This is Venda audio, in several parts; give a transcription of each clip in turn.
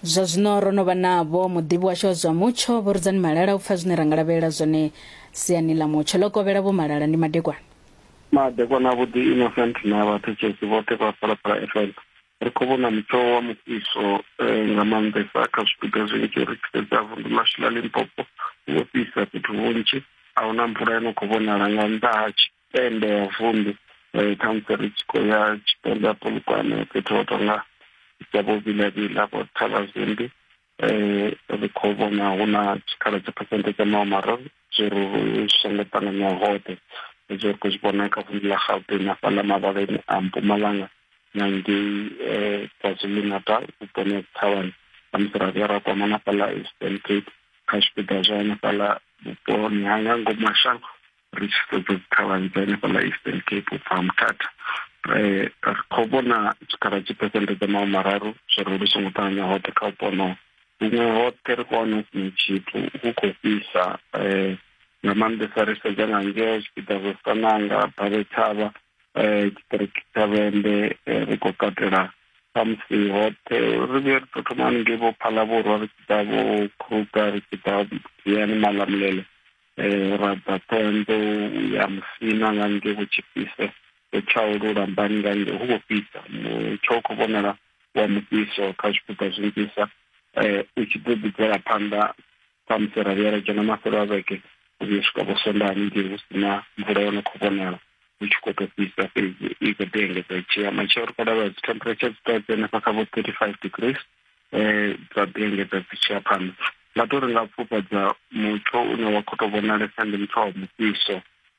Zwa zwino ro no vha navho muḓivhi washu wa zwa mutsho Vho Rudzani Malala u pfa zwine ra nga lavhelela zwone siani ḽa mutsho. Ḽo kovhela Vho Malala ndi madekwana. Madekwana avhuḓi Innocent na vhathetshelesi vhoṱhe vha Phalaphala FM. Ri khou vhona mutsho wa mufhiso eh, nga maanḓesa kha zwipiḓa zwinzhi ri tshi sedza vunḓu ḽashu ḽa Limpopo hu vho fhisa fhethu hunzhi a huna mvula yo no khou vhonala nga nnḓa ha tshi tende ya vunḓu eh, khamusi ri tshi khou ya tshipembe ha polokwane fhethu ho tonga dza vho vilavila vho thavazimbi um ri khou vhona hu na tshikhala tsha phesente dza maho mararu zwori ri songo ṱanganya hoṱhe zwo ri khou zwi vhona kha vunḓu ḽa gauteng hafhaḽa mavhaleni a mpumalanga na ngei um kwazulu natal vhuponi ha thavhani khamusi ra vhuya ra kwama na fhaḽa eastern cape kha zwipiḓa zwa hanefhaḽa vhuponi ha nga ngomashango ri tshi sedza dzikhalani dza henefhaḽa eastern cape u bva muthatha um eh, ri khou vhona tshikhala tshi phesente dza mahu mararu zwo ri lu songo ṱanganya hoṱhe kha vhupo honoho huṅwe hoṱhe ri khou wana hu sina tshithu hu khou fhisa um nga maanḓesa ri sedza nga ngeo zwipiḓa zwa sananga bale thavha um tshiṱiriki tsha vhende eh, ri khou katela samusi hoṱhe ri vhuye ri tou thoma haningei vho phalavhurwa ri tshi ḓa vho kruga ri tshi ḓa yani malamulele Eh, ra bva ṱhohoyanḓou u ya musina nga ngei vhutshifhise u tsha u lulambani nga ngei hu vho fhisa mutsho u khou vhonala wa mufhiso kha zwipuka zwinzhisa um u tshi ḓo ḓi bvela phanḓa samusi ra vhuya ra dzhena mafhelo a vhege u vhuya swika vho sondaha haningei hu si na mvula yo no khou vhonala hu tshi khou tou fhisa fhedzi i khou ḓi engedza i tshi ya matshelo ri khou lavhelela dzi temperature dzi tea dzi henefha kha vho thirty five degrees um dza ḓi engedza dzi tshiya phanḓa nga to ri nga pfufhadza mutsho une wa khou tou vhonalesa ndi mutsho wa mufhiso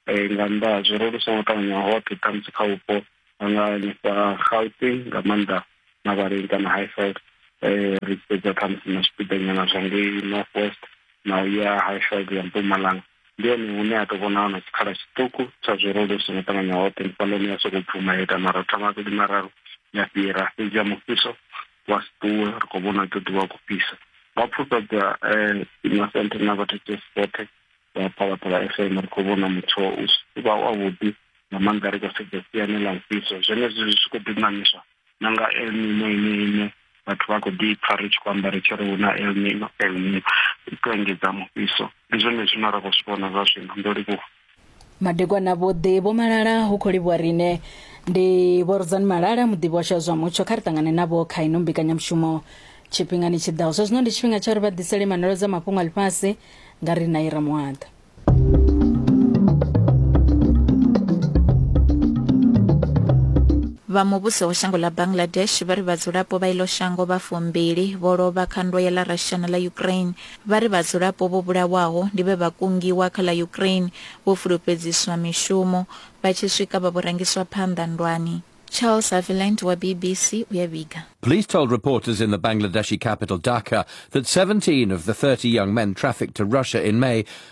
um nga nnḓa ha zwo ro lu songo ṱavhanya hoṱhe ṱhamusi kha vhupo nga hanefha gauteng nga maanḓa mavhaleni kana highfield um ri tshi sedza ṱhamusi na zwipiḓanyana zwa ngei north west na u ya highfield ya mpumalanga ndi hone hune ha tou vhona hona tshikhala tshiṱuku tsha zwo ro lu songo ṱavhanya hoṱhe ndi fhaḽoni ya sokou bvuma ya ita maratha mavhili mararu ya fhira fhedzi ya mufhiso vha si ṱuwe ri khou vhona ḓo ḓivha khou fhisa vha pfufhedza um eh, masente na vhathetsesi vhoṱhe vha phalaphala fm ri khou vhona mutsho u si vha wavhuḓi nga maanḓa ri khou sedza siani ḽa mufhiso zwenezwi zwi tshi khou ḓi ṋaṋiswa na nga elmino ine ine vhathu vha khou ḓi pfa ri tshi khou amba ri tshi ri hu na elmino elmino i khou engedza mufhiso ndi zwone zwine ra khou zwi vhona zwa zwino ndo livhuwa madekwana vhoḓi vho malala hu khou livhuwa riṋe ndi vho rudzani malala muḓivhi wa zwa mutsho kha ri ṱangane navho kha ino mbekanyamushumo tshifhingani tshi ḓaho zwa zwino ndi tshifhinga tsha uri vha ḓisele manolo dza mafhungo a ḽifhasi nga ri na ira muhaḓa vha muvhuso wa shango ḽa bangladesh vha ri vhadzulapo vha iḽo shango vha fumbili vho lovha kha ndwa ya ḽa russia na ḽa ukraine Vha ri vhadzulapo vho vhulawaho ndi vhe vha kungiwa kha ḽa Ukraine, vho fulufhedziswa mishumo, vha tshi swika vha vho rangiswa phanḓa nndwani. Charles Haviland wa BBC u ya vhiga. Police told reporters in the Bangladeshi capital Dhaka that 17 of the 30 young men trafficked to Russia in May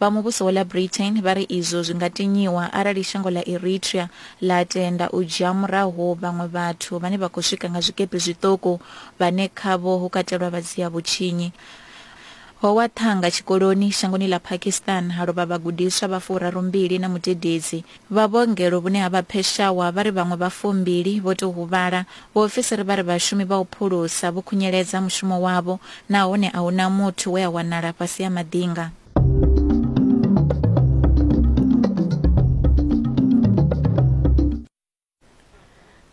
Vha muvhuso wa ḽa Britain vha ri izwo zwi nga tinyiwa arali shango ḽa Eritrea ḽa tenda u dzhia murahu vhaṅwe vhathu vhane vha khou swika nga zwikepe zwiṱuku vhane khavho hu katelwa vha dzia vhutshinyi. Ho wa ṱhanga tshikoloni shangoni ḽa Pakistan ha lovha vhagudiswa vha furarumbili na mudededzi. Vha vhuongelo vhune ha vha Peshawar vha ri vhaṅwe vha fumbili vho tou huvhala. Vhaofisiri vha ri vhashumi vha u phulusa vho khunyeledza mushumo wavho nahone a hu na muthu we a wanala fhasi ha maḓinga.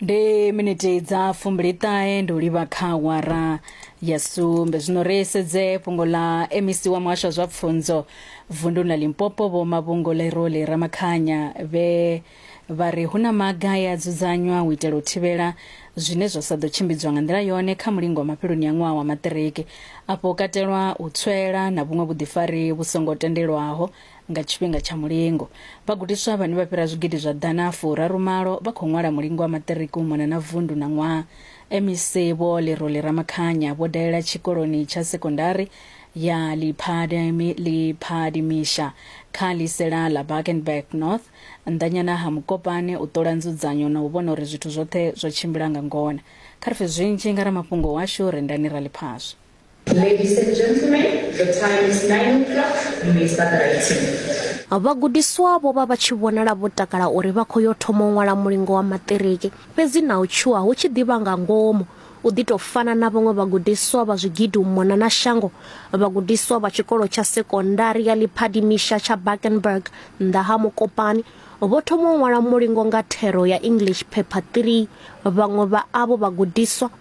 ndi miniti dza fumbiliṱahe ndi u livha kha wara ya sumbe zwino ri sedze fhungo ḽa mec wa muhasho wa zwa pfunzo vunduni ḽa limpopo vho mavhungo leroli ramakhanya vhe vha ri hu na maga e a dzudzanywa u itela u thivhela zwine zwa sa ḓo tshimbidzwa nga nḓila yone kha mulingo wa mafheloni a ṅwaha wa maṱiriki afho katelwa u tswela na vhuṅwe vhuḓifari vhu songo tendelwaho Nga tshifhinga tsha mulingo, vhagudiswa vhane vha fhira zwigidi zwa ḓana furaru malo vha khou ṅwala mulingo wa maṱiriki u mona na vundu na ṅwaha. MEC Vho Lerole Ramakhanya vho dalela tshikoloni tsha sekondari ya Liphadimisha kha ḽisela ḽa Bakenberg North, nnḓanyana ha Mokopane u ṱola nzudzanyo na u vhona uri zwithu zwoṱhe zwo tshimbila nga ngona. Kha ri pfe zwinzhi nga ramafhungo washu Rendani Raliphaswa. Ladies and gentlemen, the time is 9 o'clock. You may start writing. Vhagudiswa vho vha vha tshi vhonala vho takala uri vha khou yo thoma u ṅwala mulingo wa maṱiriki. Fhedzi na u tshuwa hu tshi ḓivha nga ngomu. U ḓi tou fana na vhaṅwe vhagudiswa vha zwigidi u mona na shango, vhagudiswa vha tshikolo tsha sekondari ya Liphadimisha tsha Bakenberg nnḓa ha Mokopane vho thoma u ṅwala mulingo nga thero ya English Paper 3. Vhaṅwe vha avho vhagudiswa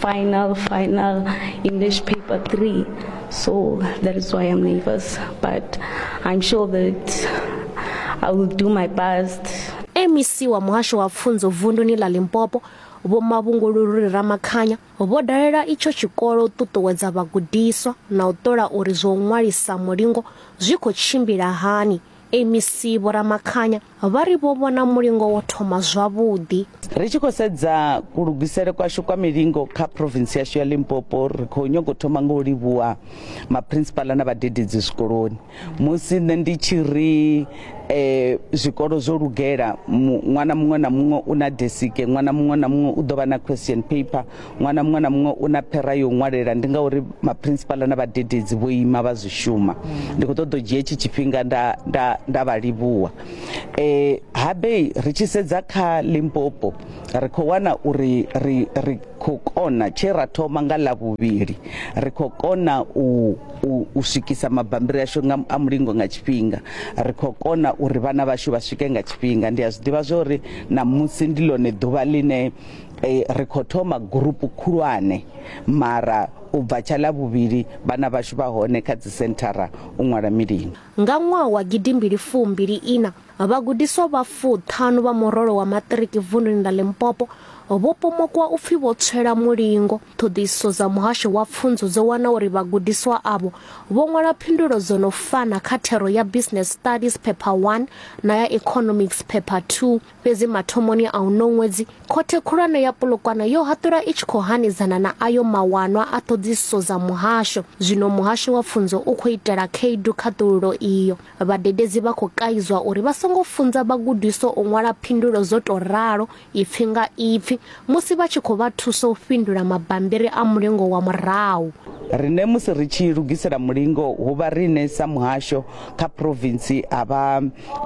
final, final English paper three. So that is why I'm nervous. But I'm sure that I will do my best. mec wa muhasho wa pfunzo vunduni ḽa limpopo vho mavhungululuri ramakhanya vho dalela itsho tshikolo u ṱuṱuwedza vhagudiswa na u ṱola uri zwo ṅwalisa mulingo zwi khou tshimbila hani MEC Vho Ramakhanya vha ri vho vhona mulingo wo thoma zwavhuḓi. Ri tshi khou sedza kulugisele kwashu kwa milingo kha province yashu ya Limpopo, ri khou nyaga u thoma nga u livhuwa maprinsipala na vhadededzi zwikoloni. Musi nṋe ndi tshi ri eh, zwikolo zwo lugela, ṅwana muṅwe na muṅwe u na desike, ṅwana muṅwe na muṅwe u ḓo vha na question paper, ṅwana muṅwe na muṅwe u na phera yo ṅwalela ndi ngauri maprinsipala na vhadededzi vho ima vha zwi shuma ndi khou ṱoḓa u dzhia hetshi tshifhinga nda, nda, nda vha livhuwa e, habei ri tshi sedza kha limpopo ri khou wana uri ri, ri khou kona tshe ra thoma nga ḽa vhuvhili ri khou kona u, u, u swikisa mabambiri ashu nga, a mulingo nga tshifhinga ri khou kona uri vhana vhashu vha swike nga tshifhinga ndi a zwi ḓivha zwa uri ṋamusi ndi ḽone ḓuvha ḽine eh, ri khou thoma gurupu khulwane mara u bva tsha ḽa vhuvhili vhana vhashu vha hone kha dzisenthara u ṅwala milimo nga ṅwaha wa gidimbili fumbili ina vhagudiswa vha fuṱhanu vha murole wa maṱiriki vunḓuni ḽa limpopo vho pomokwa u pfi vho tswela mulingo ṱhoḓisiso dza muhasho wa pfunzo dzo wana uri vhagudiswa avho vho ṅwala phindulo dzo no fana kha thero ya business studies paper 1 na ya economics paper 2 Fhedzi mathomoni a uno ṅwedzi, Khothe Khulwane ya Polokwane yo haṱula i tshi khou hanedzana na ayo mawanwa a ṱhoḓisiso dza muhasho. Zwino muhasho wa pfunzo u khou itela khaedu khaṱululo iyo. Vhadededzi vha khou kaidzwa uri vha songo funza vhagudiswa u ṅwala phindulo dzo tou ralo ipfi nga ipfi musi vha tshi khou vha thusa u fhindula mabambiri a mulingo wa murahu. Riṋe musi ri tshi lugisela mulingo ho vha riṋe sa muhasho kha province ha vha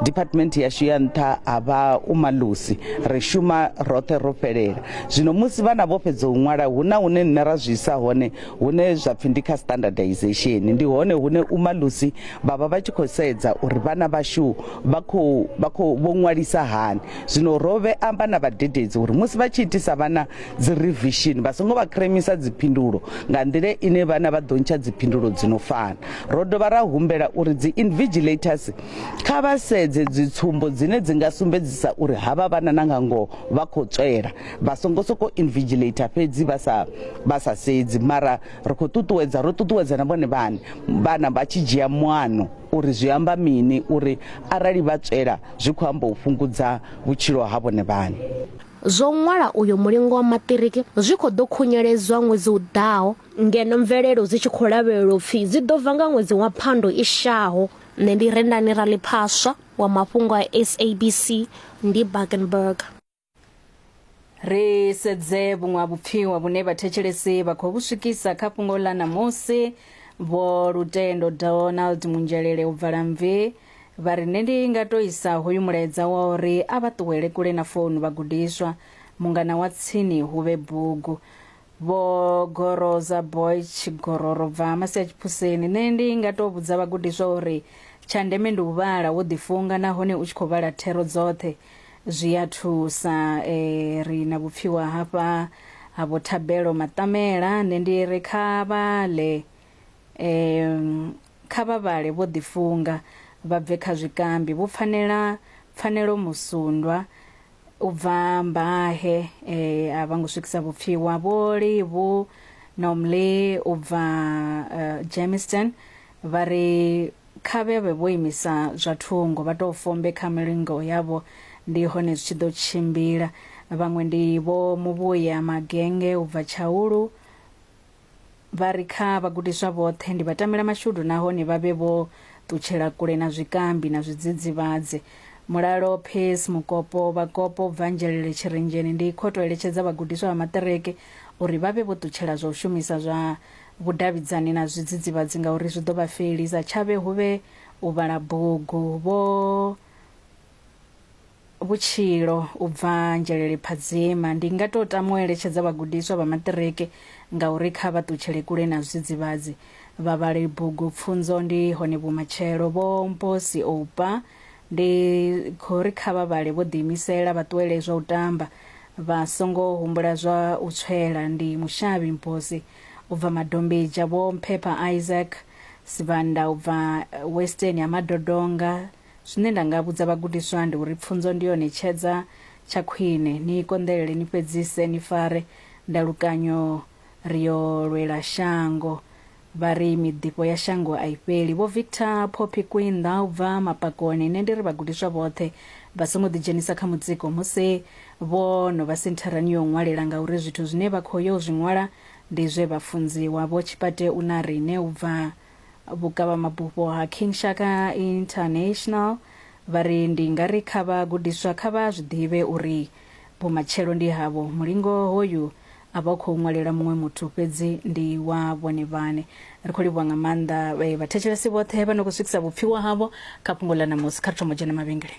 department yashu ya nṱha ha vha umalusi ri shuma roṱhe ro fhelela zwino musi vhana vho fhedza u ṅwala hu na hune nṋe ra zwi isa hone hune zwa pfhi ndi kha standardization ndi hone hune umalusi vha vha vha tshi khou sedza uri vhana vhashu vha khou vha khou vho ṅwalisa hani Zwino ro vhe amba na vhadededzi uri musi vha tshi itisa vhana dzi revishini vha songo vha kremisa dziphindulo nga nḓila ine vhana vha ḓo ntsha dziphindulo dzi no fana. Ro dovha ra humbela uri dzi invigilators kha vha sedze dzitsumbo dzine dzi nga sumbedzisa uri havha vhana na nga ngoho vha khou tswela, vha songo sokou invigilator fhedzi vha sa vha sa sedzi mara ri khou ṱuṱuwedza ro ṱuṱuwedza na vhone vhane vhana vha tshi dzhia muano uri zwi amba mini uri arali vha tswela zwi khou amba u fhungudza vhutshilo ha vhone vhaṋe. Zwo ṅwala uyo mulingo wa maṱiriki zwi khou ḓo khunyeledzwa ṅwedzi u ḓaho ngeno mvelelo dzi tshi khou lavhelelwa u pfi dzi ḓo bva nga ṅwedzi wa Phando i shaho. Nṋe ndi Rendani Raliphaswa wa mafhungo a SABC, ndi Bakenburg. ri sedze vhuṅwe ha vhupfiwa vhune vhathetshelesi vha khou vhu swikisa kha fhungo ḽa ṋamusi vho lutendo donald munzhelele u bvala mvi vha ri nṋe ndi nga to isa hoyu mulaedza wa uri a vha ṱuwele kule na founu vhagudiswa mungana wa tsini hu vhe bugu vho goroza boych gororo bva masi a tshipuseni nṋe ndi nga tou vhudza vhagudiswa uri tsha ndeme ndi u vhala wo ḓifunga nahone u tshi khou vhala thero dzoṱhe zwi a thusa um ri na vhupfiwa hafha ha vho thabelo maṱamela nṋe ndi ri kha vhale um kha vha vhale vho ḓifunga vha bve kha zwikambi vho pfanela pfanelo musundwa u bva mbahe eh, a vha ngo swikisa vhupfiwa vho livhu nomley u bva uh, jameson vha ri kha vhe vhe vho imisa zwa thungo vha tou fombe kha milingo yavho ndi hone zwi tshi ḓo tshimbila vhaṅwe ndi vho muvhuya magenge u bva tshaulu Vha ri kha vhagudiswa vhoṱhe ndi vhatamelamashudu nahone vha vhe vho ṱutshela kule na zwikambi na zwidzidzivhadzi. Mulalo Pace Mukopo, Vhakopo u bva Nzhelele Tshirenzheni, ndi khou tou eletshedza vhagudiswa vha maṱiriki uri vha vhe vho ṱutshela zwa u shumisa zwa vhudavhidzani na zwidzidzivhadzi ngauri zwi ḓo vha felisa. Tshavhe hu vhe u vhala bugu. Vho. vhutshilo u bva nzhelele phadzima ndi nga to tama u eletshedza vhagudiswa vha maṱiriki ngauri kha vha ṱutshele kule na zwidzidzivhadzi vha vhale bugu pfunzo ndi hone vhumatshelo vho mposi oupa ndi khou ri kha vha vhale vho ḓiimisela vha ṱuwele zwa u tamba vha songo humbula zwa u tswela ndi mushavhi mposi u bva madombedzha vho mphepha isaac sibanda u bva western ya madodonga Zwine nda nga vhudza vhagudiswa ndi uri pfunzo ndi yone tshedza tsha khwine. Ni i konḓelele, ni fhedzise, ni fare ndalukanyo. Ri yo lwela shango. Vha ri miḓifho ya shango a i fheli. Vho Victor Poppy Kwinda u bva Mapakoni, Nṋe ndi ri vhagudiswa vhoṱhe vha songo ḓidzhenisa kha mutsiko musi vho no vha sentharani ya u ṅwalela ngauri zwithu zwine vha khou yo zwi ṅwala ndi zwe vha funziwa. Vho Tshipate Unarine u bva vhukavhamabufho ha King Shaka International vha ri ndi nga ri kha vha gudiswa kha vha zwi ḓivhe uri vhumatshelo ndi havho, mulingo hoyu a vha u khou ṅwalela muṅwe muthu fhedzi ndi wa vhone vhane. Ri khou livhuwa nga maanḓa vhathetshelesi vhoṱhe vha no khou swikisa vhupfiwa havho kha fhungo ḽa ṋamusi. Kha ri thoma u dzhena mavhengeleni.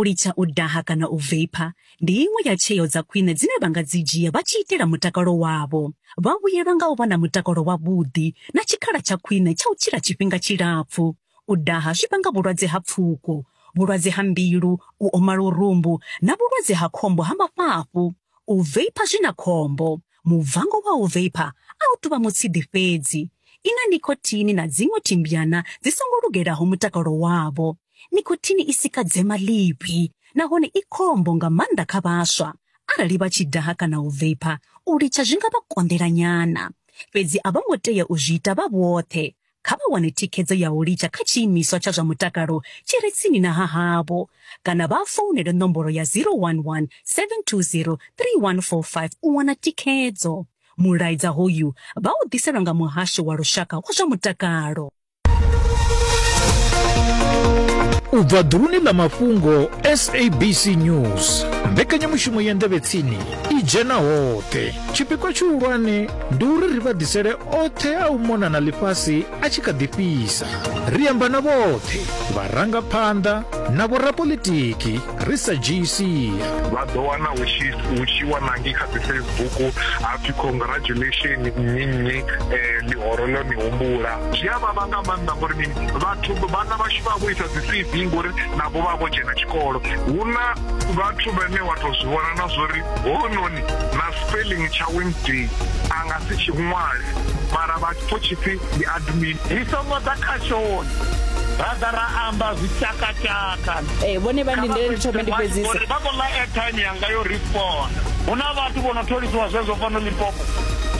U litsha u daha kana u veipha ndi iṅwe ya tsheo dza khwine dzine vha nga dzi dzhia vha tshi itela mutakalo wavho. Vha vhuyelwa nga u vha na mutakalo wavhuḓi na tshikhala tsha khwine tsha u tshila tshifhinga tshilapfu. U daha zwi vhanga vhulwadze ha pfuko, vhulwadze ha mbilu, u oma lurumbu na vhulwadze ha khombo ha mafhafhu. U veipha zwi na khombo. Mubvango wa u veipha a u tou vha mutshidi fhedzi. I na nikhothini na dziṅwe thimbyana dzi songo lugelaho mutakalo wavho. Nikhothini i sika dzema ḽivhi nahone i khombo nga maanḓa kha vhaswa. Arali vha tshi daha kana u veipha, u litsha zwi nga vha konḓela nyana. Fhedzi a vho ngo tea u zwi ita vha vhoṱhe. kha vha wane thikhedzo ya u litsha kha tshiimiswa tsha zwa mutakalo tshi re tsini na ha havho kana vha founele nomboro ya 011 720 3145 u wana thikhedzo. Mulaedza hoyu vha u ḓiselwa nga Muhasho wa Lushaka wa zwa Mutakalo. u bva ḓuluni ḽa mafhungo sabc news mbekanyamushumo ya nḓevhetsini i dzhena hoṱhe tshipikwa tshihulwane ndi uri ri vha ḓisele oṱhe a u mona na ḽifhasi a tshi kha ḓi fhisa ri amba na vhoṱhe vharangaphanḓa na vhorapolitiki ri sa dzhii sia vha ḓo wana hu tshi hu tshi wanangi kha dzi facebook hapfi congratulation nnyi nnyi eh, ḽihoro ḽo ni humbula zwi a vhavha nga maanḓa ngori mini vhathu vhana vhashu vha vho isa dzi cv ngori navho vha vho dzhena tshikolo hu na vhathu vhane wa tou zwi vhona na zwori hononi na Spelling tsha Wednesday a nga si tshi ṅwale mara vha tshi pfo tshipfi ndi admin. Ri songo ḓa khashoni ra ḓa ra amba zwi tshakatshaka. Ee, vhone vha ndindele ndi thome ndi fhedzise. Uri vha khou ḽa airtime yanga yo respond. Hu na vhathu vho no tholisiwa zwezwo fhano Limpopo.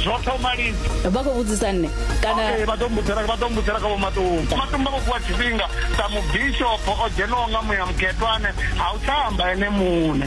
Zwo thoma lini? Vha khou vhudzisa nṋe kana Okay, vha ḓo mbudzela vha ḓo mbudzela kha vho Matumba. Matumba vho fhiwa tshifhinga sa mubishopho o dzhenaho nga muya mukhethwane ha u tsha amba ene muṋe.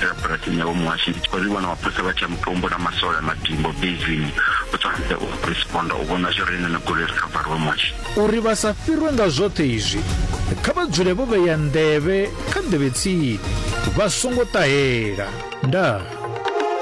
ḓirabulasi nyavho muhasho ndi tshi khou zwi vhona mapholisa vha tshi ya mutombo na masole a madimbo bezini u tshwanedza u responda u vhona zwo ri nene goloi ri kha vhariwe muhasho uri vha sa fhirwe nga zwoṱhe izwi kha vha dzule vho vheya nḓevhe kha nḓevhe tsini vha songo ṱahela ndaa